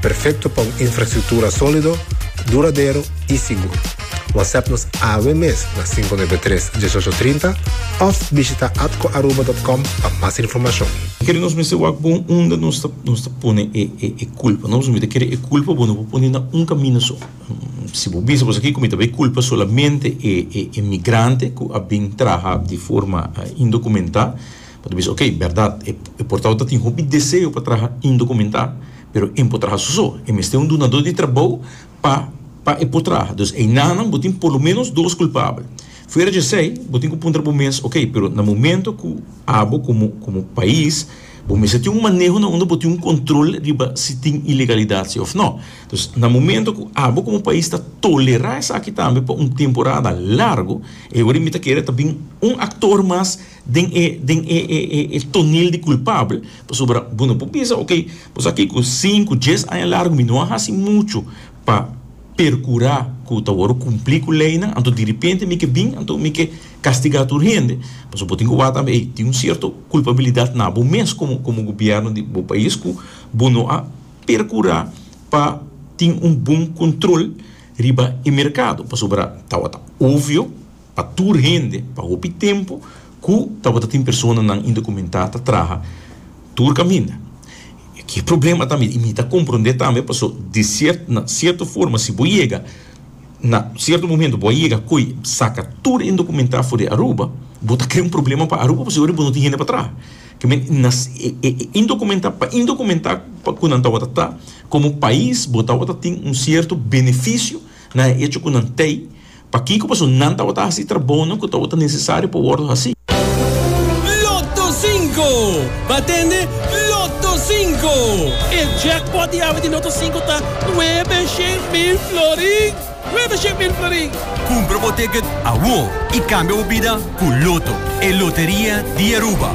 Perfecto pa un infrastructura solido, duradero y sigur. Whatsapp nos awe mes na cinco nuebe tres, dieshocho trinta of bishita atcoaruba.com pa mas informacion. Kere nos mester wak bon unda nos ta nos ta pone e e e culpa. Nos no mester kere e culpa bo no por pone na un camino so. Si bo bisa boso aki cu mi ta bay culpa solamente e e e migrante cu a bin traha di forma indocumenta, Bo ta bisa, ok, bèrdat, e portao ta tin hopi deseo pa traha indokumentá, pero e no por traha su so, e mester un dunadó di trabou pa pa e por traha. Dus einanan bo tin por lo ménos dos kulpabel. Fuera di esei, bo tin ku puntra bo mes, ok, pero na momentu ku abo komo komo pais bo mester tin un maneho na unda bo tin un kontrol riba si tin ilegalidat si òf nò. Dus na momentu ku abo komo pais ta tolerá esaki tambe pa un temporada largu, e orin mi ta kere ta bin un aktor mas, den e den e e e e tonel di kulpabel, pasobra bo no por bisa, ok, bo sa ke ku sinku, dies aña largu mi no a hasi muchu pa perkurá ku ta wòrdu kumplí ku leinan, anto diripente mi ke bin, anto mi ke kastigá tur hende. Pasobra bo tin ku wak tambe ei, tin un sierto kulpabilidat na bo mes komo komo gobièrnu di bo pais ku bo no a perkurá pa tin un bon kontrol riba e merkado, pasobra tabata obvio, pa tur hende pa hopi tempu ku tabata tin personanan indokumentá ta traha tur kaminda. E ke problema tambe i mi ta komprondé tambe paso di sierto na sierto forma si bo yega na sierto momento bo a yega ko'i saka tur indokumentá for di Aruba bo ta krea un problema pa Aruba pasobra bo no tin hende pa traha ke men na e indokumentá pa indokumentá pa ku nan tabata ta komo pais bo tabata tin un sierto benefisio na e echo ku nan tei Pakiko paso nan tabata hasi trabonan ku tabata nesesario pa wòrdu hasi? Lotto Cinco! Bo tende Lotto Cinco! E jackpot di awe di Lotto Cinco ta nuebe shen mil florin! Nuebe shen mil florin! Kumpra bo ticket awor i kambia bo bida ku Lotto, e loteria di Aruba!